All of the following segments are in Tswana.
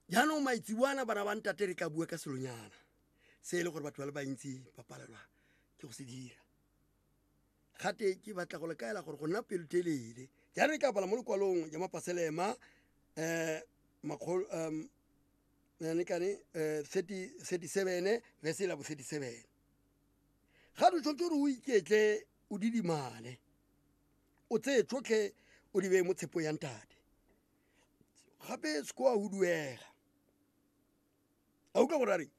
jaanong maitseboana bana ba ntate re tla bua ka selonyana se e le gore batho ba le bantsi ba palelwa ke go se dira gate ke batla go lekaela gore go nna pelotelele jaanong e tla bala mo lekwalong ya mapaselema um makgolo um nekane um thirty seven verse e labo thirty seven ga re tshwanetse gore o iketle o didimale o tseye tsotlhe o di beye mo tshepo ya ntate gape seko a huduega a utlwa gore a reng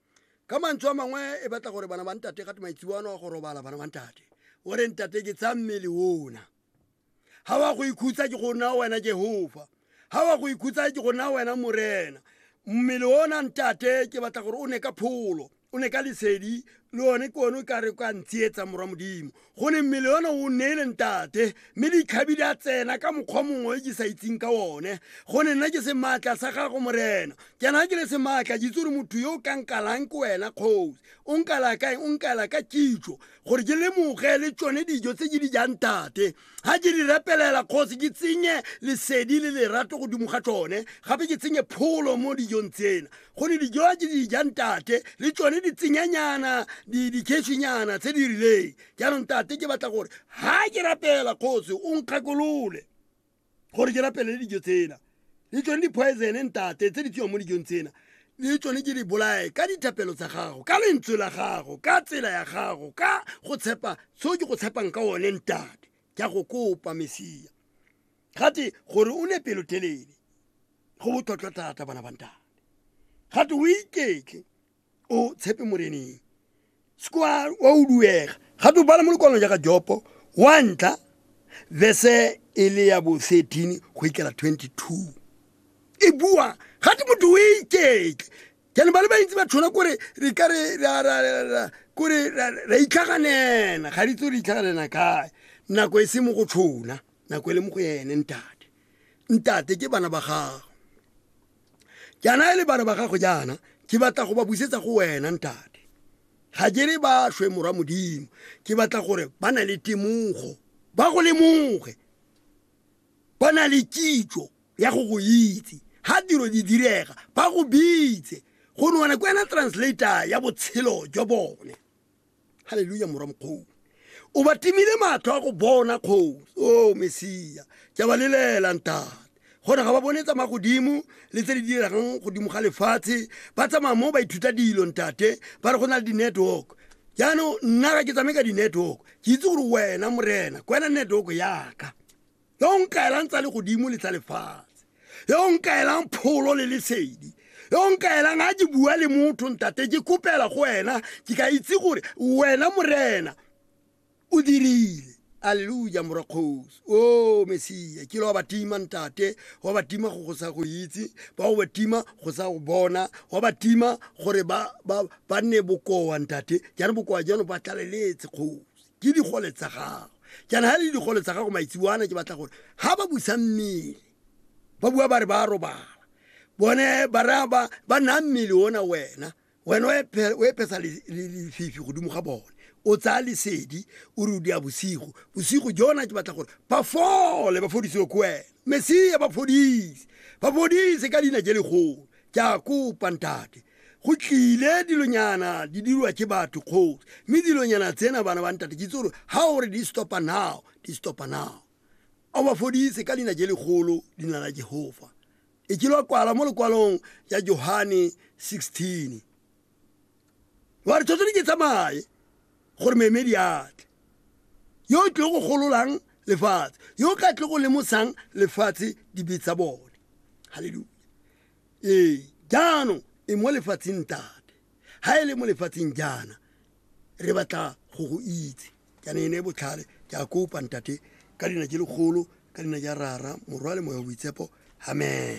ka mantswe a mangwe e batla gore bana ba ntate gate maitsiwano a go robala bana ba ntate o re ntate ke tsa mmele ona ga wa go ikhutsa ke go nna wena jehova ga wa go ikhutsa ke go nna wena morena mmele ona ntate ke batla gore o ne ka pholo o ne ka lesedi le one ke one o ka re ka ntsietsa morwa modimo go ne mmele yone o neele ntate mme dikgabi di a tsena ka mokgwa mongwe e ke sa itseng ka one go ne nna ke se maatla sa gago morena ke na ke le se maatla ke itse gore motho yo o ka nkalang ke wena kgosi o nkala kae o nkala ka kitso gore ke lemoge le tsone dijo tse ke di jang tate ga ke di repelela kgosi ke tsenye lesedi le lerato godimo ga tsone gape ke tsenye pholo mo dijong tsena go ne dijo tse di jang tate le tsone ditsenyanyana dikhetšhinyana tse di rileng jaanong tate ke batla gore ga ke rapela kgosi o nkgakolole gore ke rapele le dijo tsena le tsone di-poisone ntate tse di tsewang mo dijong tsena le tsone ke di bolae ka dithapelo tsa gago ka lentswe la gago ka tsela ya gago ka go tshepa seo ke go tshepang ka one ntate ke a go kopa mesia gate gore o ne pelotelele go botlhotlhwa thata bana bantane gate o iketle o tshepe moreneng sekwa wa o duega gate o bala mo lekwalong jaaka jopo wa ntla verse e le ya bo 13 go ikela 22 e bua gate motho o iketle jane ba le bantsi ba tshwana kore re ka re ra- ra- ra- ra- kore ra ra itlhaganela ga ditse re itlhaganela kae nako e se mo go tshona nako e le mo go ene ntate ntate ke bana ba gago jaana e le bana ba gago jaana ke batla go ba busetsa go wena ntate ga ke re ba shwe morwa modimo ke batla gore ba na le temogo ba go lemoge ba na le kitso ya go go itse ga tiro di direga ba go bitse go ne wena ke wena translator ya botshelo jwa bone halleluja morwa mokgou o ba timile matlho a go bona kgosi o oh, mesia ke ba lelela ntate gona ga ba bone tsamaya godimo le tse di diregang godimo ga lefatshe ba tsamaya mo ba ithuta dilo ntate ba re go na le di-network jaanong nna ga ke tsamaye ka di-network ke itse gore wena morena ke wena network yaka yo o nkaelang tsa legodimo le tsa lefatshe yo o nkaelang pholo le lesedi yo o nkaelang a ke bua le motho ntate ke kopela go wena ke ka itse gore wena morena o dirile alleluja morakgosi o oh, mesia ke le wa batima ntate wa batima go go sa go itse ba go batima go sa go bona wa batima gore ba nne bokoa ntate jane bokoa jano ba tlaleletse kgosi ke digole tsa gago jaana ga le digole tsa gago maitseboana ke batla gore ga ba busa mmele ba bua ba re ba robala bone ba raya ba ba naya mmele ona wena wena o ephe- o epesa le- le- lefifi godimo ga bone o tsaya lesedi o re o dia bosigo bosigo jona ke batla gore ba fole ba fodisiwe ko wena mesia ba fodise ba fodise ka leina je legolo ke a kopa ntate go tlile dilonyana di dirwa ke batho kgosi mme dilonyana tsena bana ba ntate ke itse gore ga o re di stopa now di stopa now a ba fodise ka leina je legolo leina la jehofa e ke lwa kwala mo lekwalong ya johane 16 wa re tshwanetse di ke tsamaye gore meemedi atle yo o tlile go gololang lefatshe yo o ka tle go lemosang lefatshe dibe tsa bone halleluja ee jaanong e mo lefatsheng tate ha e le mo lefatsheng jaana re batla go go itse jaana e ne e botlhale ke a kopa ntate ka dina je legolo ka dina ja rara morwa le moya boitsepo amen